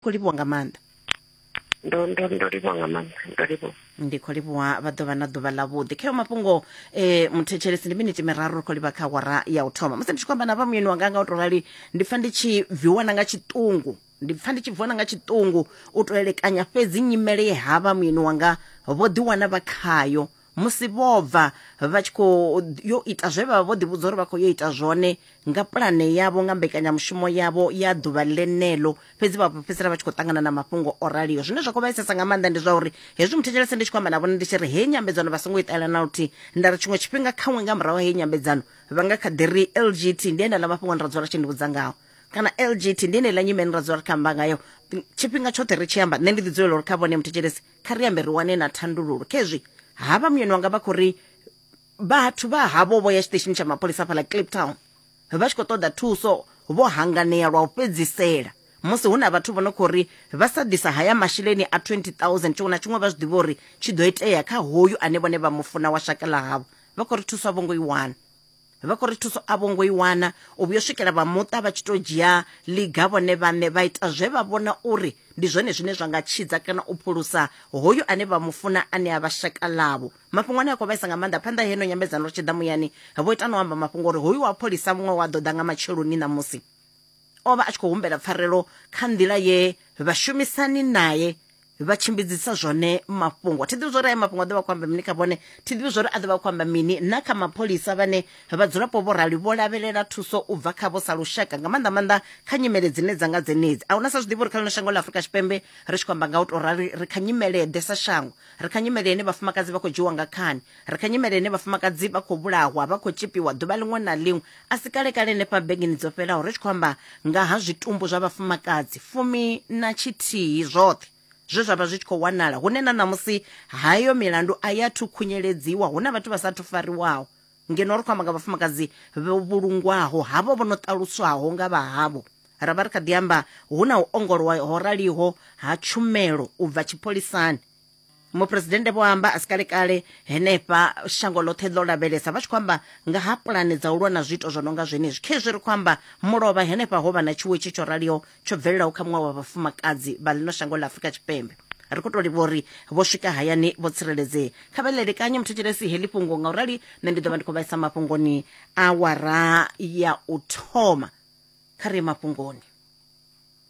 khou livhuwa nga maanḓa ndo ndo ndo livhuwa nga maanḓa ndo livhuwa ndi khou livhuwa vha ḓo vha na ḓuvha ḽavhuḓi kheo mafhungo um muthetshelesi ndi miniti miraru ri khou livha kha awara ya u thoma musi ndi tshi khou amba na vha muyeni wanga nga u tou rali ndi pfa ndi tshi bviwa na nga tshiṱungu ndi pfa ndi tshi bviwa na nga tshiṱungu u tou elekanya fhedzi nyimele ye ha vha muyeni wanga vho ḓiwana vha khayo musi vho bva vha tshi khou yo ita zwe vha vha vho ḓivhudza uri vha khou yo ita zwone nga pulane yavho nga mbekanyamushumo yavho ya ḓuvha ḽeneḽo fhedzi vha fhedzisela vha tshi khou ṱangana na mafhungo o raliho zwine zwa khou vhaisesa nga maanḓa ndi zwa uri hezwi muthetshelese ndi tshi khou amba na vhone ndi tshi ri heyi nyambedzano vha songo i ṱalela na luthihi nda ri tshiṅwe tshifhinga khaṅwe nga murahu heyi nyambedzano vha nga kha ḓi ri lgt ndi enela mafhungo ni ra dzula tshi ndi vhudza ngaho kana lgt ndi enela nyimele ni ra dzula ri kha amba ngayo tshifhinga tshoṱhe ri tshi amba nṋe ndi ḓi dzulela uri kha vhone muthetshelesi kha ri ambe ri wane na thandululo khezwi havha muyeni wanga vha khou ri vhathu vha havho vho ya tshiṱeshini tsha mapholisa fhaḽa cliptown vha tshi khou ṱoḓa thuso vho hanganea lwa u fhedzisela musi hu na vhathu vho no khou ri vha sa ḓisa haya masheleni a 20000 tshiṅwe na tshiṅwe vha zwi ḓivha uri tshi ḓo itea kha hoyu ane vhone vha mu funa wa shaka ḽa havho vha khou ri thuso a vho ngo i wana vha khou ri thuso a vho ngo i wana u vhuyo swikela vha muṱa vha tshi to dzhia liga vhone vhaṋe vha ita zwe vha vhona uri ndi zwone zwine zwa nga tshidza kana u phulusa hoyu ane vha mufuna ane a vha shaka ḽavho mafhungo ane a khou vhaisa nga maanḓa phanḓa heno nyambedzano ri tshi ḓa muyani vho ita no amba mafhungo uri hoyu wa pholisa muṅwe wa ḓo ḓa nga matsheloni ṋamusi o vha a tshi khou humbela pfarelo kha nḓila ye vhashumisani naye vha tshimbidzisa zwone mafhungo thi ḓivhi zwo ri ayo mafhungo a ḓo vha khou amba mini kha vhone thi ḓivhi zwo ri a ḓo vha khou amba mini na kha mapholisa vhane vhadzulapo vho rali vho lavhelela thuso u bva khavho sa lushaka nga maanḓa maanḓa kha nyimele dzine dza nga dzenedzi a huna sa zwi ḓivhi uri kha ḽino shango ḽa afurika tshipembe ri tshi khou amba nga u tou rali ri kha nyimele ḓe sa shango ri kha nyimele ine vhafumakadzi vha khou dzhiwa nga khani Ri kha nyimele ine vhafumakadzi vha khou vhulahwa vha khou tshipiwa ḓuvha ḽiṅwe na ḽiṅwe a si kalekale henefha begeni dzo fhelaho ri tshi khou amba nga ha zwitumbu zwa vhafumakadzi fumi na tshithihi zwoṱhe zwe zwa vha zwi tshi khou wanala hune na ṋamusi hayo milandu a ya thu khunyeledziwa hu na vhathu vha sa thu fariwaho ngeno ri khou amba nga vhafumakadzi vho vhulungwaho havho vho no ṱaluswaho nga vha havho ra vha ri kha ḓi amba hu na u ongolowa ho raliho ha tshumelo u bva tshipholisani muphuresidennde vho amba a si kalekale henefha shango ḽoṱhe ḽo lavhelesa vha tshi khou amba nga ha pulane dza u lwa na zwiito zwo no nga zwenezwi khezwi ri khou amba mulovha henefha ho vha na tshiwo itshi tsho raliho tsho bvelelaho kha muṅwe wa vhafumakadzi vha ḽino shango ḽa afurika tshipembe ri khou tou livha uri vho swika hayani vho tsireledzea kha vha ḽelekanye muthetshelesi heḽi fhungo nga u rali nṋe ndi ḓo vha ndi khou vhaisa mafhungoni awara ya u thoma kha ri ye mafhungoni